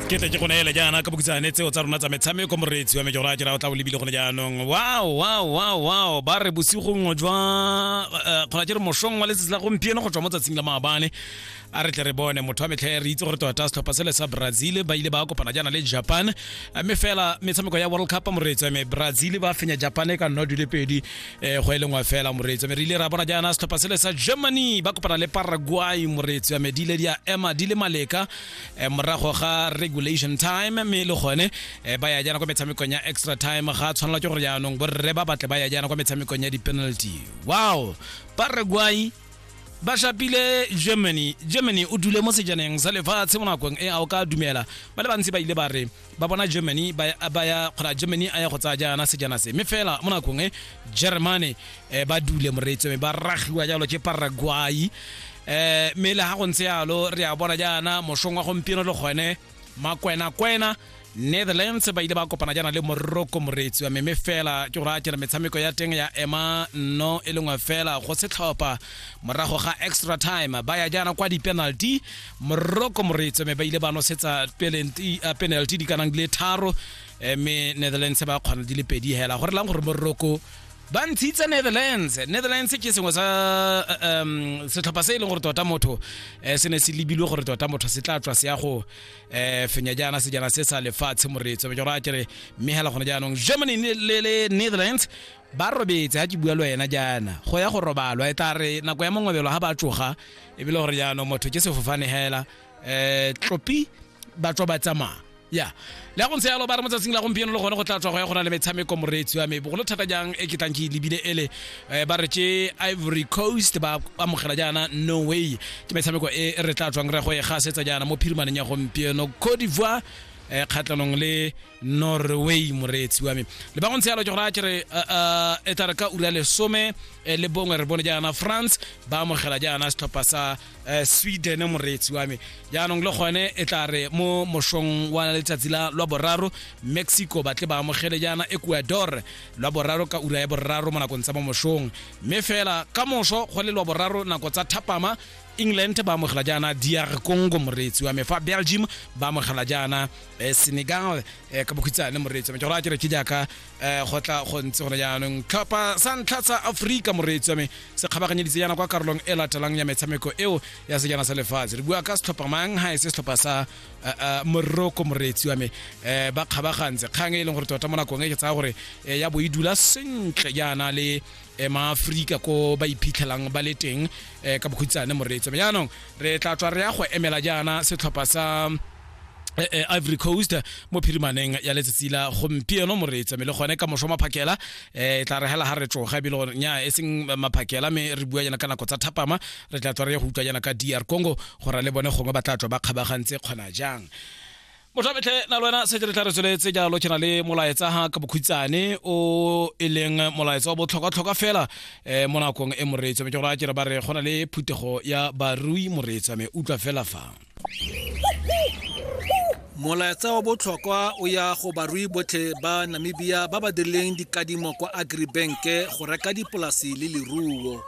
ke tle ke go neele jaana ka bokitsane tseo tsa rona tsa metshameko moreetsi wa mejora jera o tla o lebile gone jaanong wow wow wow wow ba re bosigong jwa eh, kgona ke re mošong wa letsatsi la gompieno go tswa mo tsatsing la maabane a re tle re bone motho wa metlha re itse gore tota setlhopha sele sa brazil ba ile ba kopana jaana le japan mme fela metshameko ya world cup moreetso me brazil ba fenya japan e ka nna dule pedi eh, go e lengwe fela moreetso me re ile ra bona jaana setlhopha sele sa germany ba kopana le paraguay moreetso me di ile di a ema di le maleka eh, morago ga regulation time mme e le gone eh, ba ya jaana kwa metshamekong ya extra time ga tshwanela ke gore jaanong borre ba batle ba ya jaana kwa metshamekong ya di-penalty wow paraguay ba shapile germany germany o dule mo sejaneng sa lefatshe mo nakong e a o ka dumela ba le bantsi ba ile ba re ba bona germany ba ya kgona germany a ya go tsaya jaana sejana se mme fela mo nakong e germany um ba dule moreetso mme ba ragiwa jalo ke paraguay um mme le ga go ntse yalo re a bona jaana mošong wa gompieno le gone makwenakwena netherlands ba ile ba kopana jaana le morocco moreetsi wa meme fela ke gore a kere metshameko ya teng ya ema no e lengwe fela go setlhopha morago ga extra time ba ya jaana kwa di-penalty morocco moreetsi wa me ba ile ba nosetsa penalty uh, penalty di kanang di le tharo eh, mme netherlands ba kgona di le pedi hela gore lang gore morocco ba ntshitse netherlands netherlands ke sengwe sa um setlhopha se e leng gore tota motho um se ne se lebilwe gore tota motho se tla tswa se ya go um fenya jaana sejana se sa lefatshe moreetso be jora kere mme hela gone jaanong germany le netherlands ba robetse ga ke bua le wena jaana go ya go robalwa e tla re nako ya mongwebelo ga ba tsoga ebile gore jaanong motho ke sefofane hela um tlopi ba tswa ba tsamaya ya le ya go ntse yalo ba re motsatsing la gompieno le gone go tla tswa go ya go na le metshameko moreetsi wa me bogolo thata jang e ke tlang ke lebile ele eh, ba re tse ivory coast ba amogela jaana no way ke metshameko e re tla tswang re go e gasetsa jaana mo phirimaneng ya gompieno cote d'ivoire eh, kgatlhanong le norway moreetsi wa me le ba go ntse yalo ke gore a kere eh, eh, e tla re ka ura lesome eh, le bongwe re bone jaana france ba amogela jaana setlhopha sa eh, sweden moreetsi wa me jaanong le gone e tla re mo mošong wa letsatsi la lwa boraro mexico batle ba amogele jaana ecuador lwa boraro ka ura ya boraro mo nakong tsa mo mošong mme fela ka moso go le lwa boraro nako tsa thapama england ba amogela jaana dr congo moreetsi wa me fa belgium ba amogela jaana eh, senegal eh, ka bokhutshwane moreetsi wa me ke go raya ke re ke jaaka um go tla go ntse gone jaanong tlhopha sa ntlha sa aforika moreetsi wa me se kgabaganyeditse yana kwa karolong e latelang ya metshameko eo ya sejana sa lefatshe re bua ka setlhopha mang ga e se setlhopha sa eh, eh, moroko moreetsi wa me um ba kgabagantse kgang e e leng gore tota mo nakong e ke tsaya gore ya bo e dula sentle jaana le Eh, maaforika ko ba iphitlhelang ba le teng eh, ka bokhutshane moreetso jaanong re tla tswa re ya go emela jaana setlhopha sa Eh, eh, ivory coast mo phirimaneng ya letsatsi la gompieno moreetsa mme le gone ka moso maphakela eh, e tla re hela ga re tsoga ebile gore nya e seng maphakela mme re bua yana ka nako tsa thapama re tla tswa re ya go utlwa yana ka dr congo gore le bone gongwe ba tla tswa ba kgabagantse kgona jang motho a betlhe na le wena setse re tla re tsweletse jalo ke na le molaetsa ga ka bokhutsane o e leng molaetsa wa botlhokwatlhokwa fela um mo nakong e moreetso mme ke gore a kere ba re go na le phuthego ya barui moreetsa mme utlwa fela fa molaetsa wa botlhokwa o ya go barui botlhe ba namibia ba ba dirileng dikadimo kwa agribanke go reka dipolasi le leruo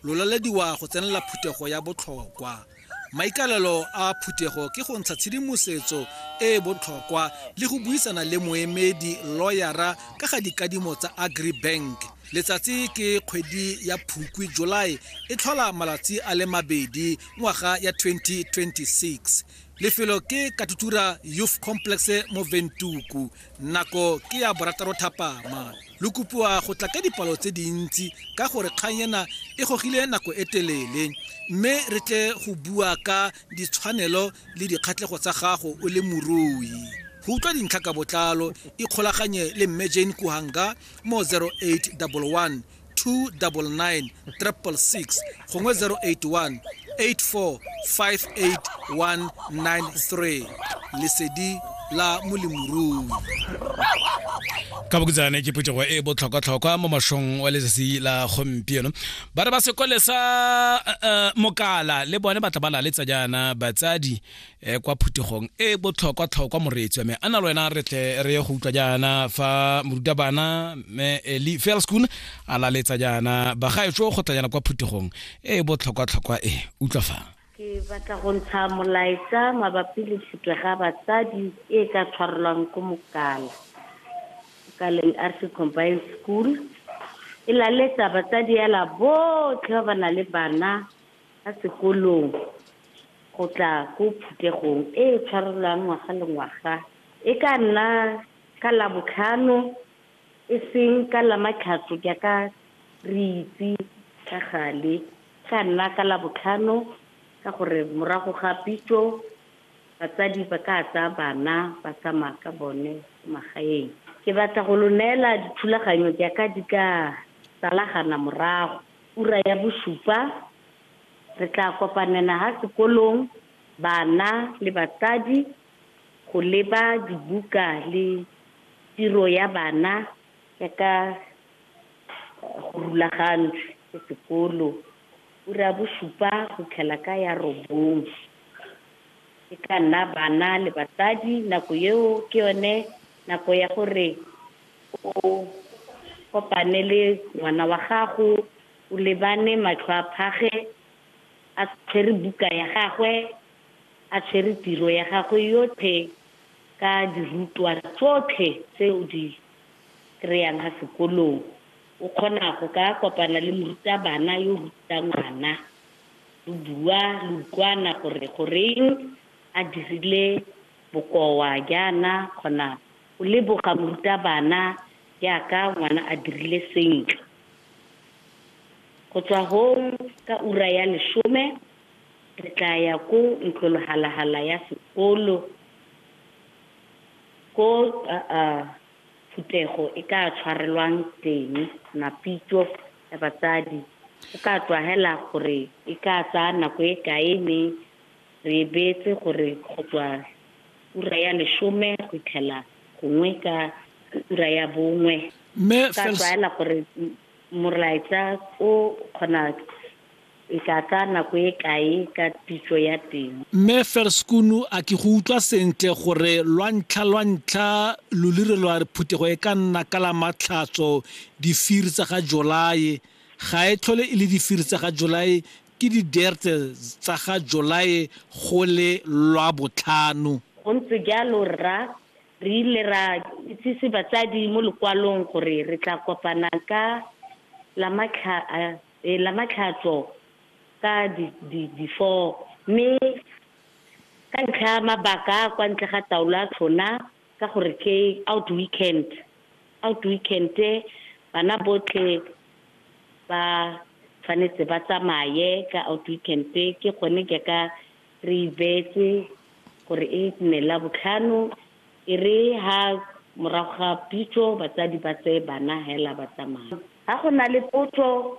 lolalediwa go tsenela phuthego ya botlhokwa maikalelo a phuthego ke go ntsha tshedimosetso e e botlhokwa le go buisana le moemedi loyara ka ga dikadimo tsa agribank letsatsi ke kgwedi ya phukwi july e tlhola malatsi a le mabedi ngwaga ya 2026 lefelo ke katutura youth complex mo ventuku nako ke ya borataro thapama lo kopiwa go tla ka dipalo tse dintsi ka gore kgang ena e gogile nako e telele mme re tle go bua ka ditshwanelo le dikgatlhego tsa gago o le morui go utlwa dintlha ka botlalo ikgolaganye le mme jane kuhanga mo 0811 299 666 gongwe 081 8458193 lesedi la molemorui ka bokutsane ke phetogo e botlhokwatlhokwa mo mošong wa letsatsi la gompieno ba re ba sekole sa uh, mokala le bone batla ba laletsa jaana batsadi e kwa phuthegong e botlhokwa tlhokwa moreetsi wa me a na le wena re tle re ye go utlwa jaana fa morutabana me eli felskun a laletsa jaana bagaetso go tla jaana kwa phuthegong e botlhokwa tlhokwa e utlwa fa ke batla go ntsha molaetsa mabapi le tlhotwe ga batsadi e ka tshwarelwang ko mokala mokaleng arse combined school e laletsa batsadi ela botlhe ba ba na le bana Kwa sekolong go tla ko phuthegong e e tshwarelwang ngwaga le ngwaga, e ka nna ka Labotlhano e seng ka Lamatlhatso jaaka re itse ka gale. E ka nna ka Labotlhano ka gore morago ga pitso batsadi ba ka tsaya bana ba tsamaya ka bone ko magaeng. Ke batla go lo neela dithulaganyo jaaka di ka salagana morago. Ura ya bosupa, re tla kopanela ha sekolong bana le batsadi go leba dibuka le tiro ya bana ya ka go rulagantswe ke sekolo. Ura ya bosupa go itlhela ka ya robong, e tla nna bana le batsadi nako eo ke yone nako ya gore O kopane le ngwana wa gago, o lebane matlho a phage, a tshwere buka ya gagwe, a tshwere tiro ya gagwe yotlhe ka dirutwa tsotlhe tse o di kry-ang ka sekolong. O kgona go ka kopana le morutabana yo o rutang ngwana, lo bua, lo utlwana gore goreng a dirile bokoa jaana kgona. O leboga morutabana jaaka ngwana a dirile sentle. Go tswa gong ka ura ya lesome re tla ya ko ntlologalahala ya sekolo ko phuthego e ka tshwarelwang teng, mapitso ya batsadi. Go ka tswa hela gore e ka tsaya nako e kae mme re beetse gore go tswa Ura ya lesome go itlhela gongwe ka ura ya bongwe. Mme ka tlwaela gore morlaetsa o kgona e ka tsaya nako e kae ka pitso ya teng. Mme Ferskunu a ke go utlwa sentle gore lwa ntlha lwa ntlha lo lire lwa re phuthego e ka nna ka la matlhatso difiri tsa ga Jolae ga e tlhole e le difiri tsa ga Jolae Ke di-date tsa ga Jolae go le Lwabotlhano. Go ntse jalo rra, re ile ra itsise batsadi mo lokwalong gore re tla kopana ka Lamatlhatso ka di four, mme ka ntlha ya mabaka a kwa ntle ga taolo a tlhona, Ka gore ke out weekend, out weekend bana botlhe ba tshwanetse ba tsamaye ka out weekend. Ke gone jaaka re e beetse gore e nne Labotlhano, e re ha morago ga pitso batsadi ba tseye bana hela ba tsamaya. Ha go na le potso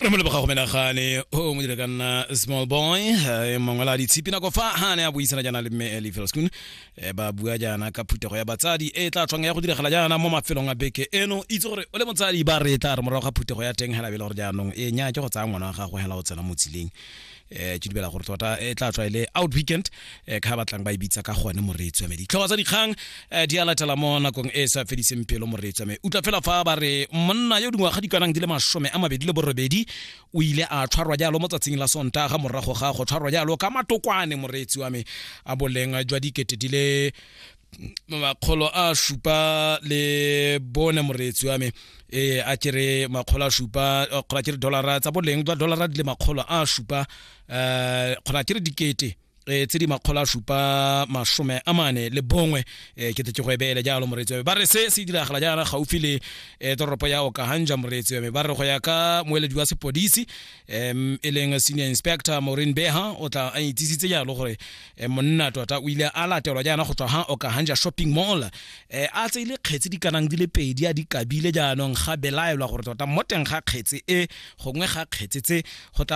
re mo leboga go menagane o mo dire ka nna small boy eh, mongwe la ditshipi nako fa ha ne a buisana jaana le mme eli felskun eh, ba bua jaana ka phuthego ya batsadi e tla tlhong ya go diragala jaana mo mafelong a beke eno itse gore o le motsadi ba re tla re morago ga phuthego ya teng hela bele gore jaanong e nya ke go tsaya ngwana wa gago hela o tsena mo tseleng eh ke dibela gore tota e tla tswa ile e out weekend eh ka batlang ba ibitsa e ka gone moreetsi wa me ditlhogo tsa dikgang eh di alatela mo nakong e sa fediseng pelo moreetsi wa me utla fela fa ba re monna yo dingwa ga di kanang di le mashome a mabedi le borobedi o ile a tshwarwa jalo mo tsatsing la sonta ga morago ga go tshwarwa jalo ka matokwane moreetsi wa me a boleng jwa dikete di le makgolo a supa le bone moreetsi wa me e a kere makgolo a supa kgolo a kere dolara tsa boleng jwa dolara di le makgolo a supa um kgolo a kere dikete e tse di makgolo a supa masome a mane le bongwe um ke te ke go ebeele jalo moreetsi wa me ba re se se diragala jaana gaufi le um toropo ya okahanja moreetsi wa me ba re go ya ka moeledi wa sepodisi um e leng senior inspector maureen beha o tla a itsisitse jalo gore e monna tota o ile a latelwa jaana go tswa ga okahanja shopping mall e a tseile kgetsi di kanang di le pedi a di kabile jaanong ga belaelwa gore tota mo teng ga kgetsi e gongwe ga kgetsi tse go tla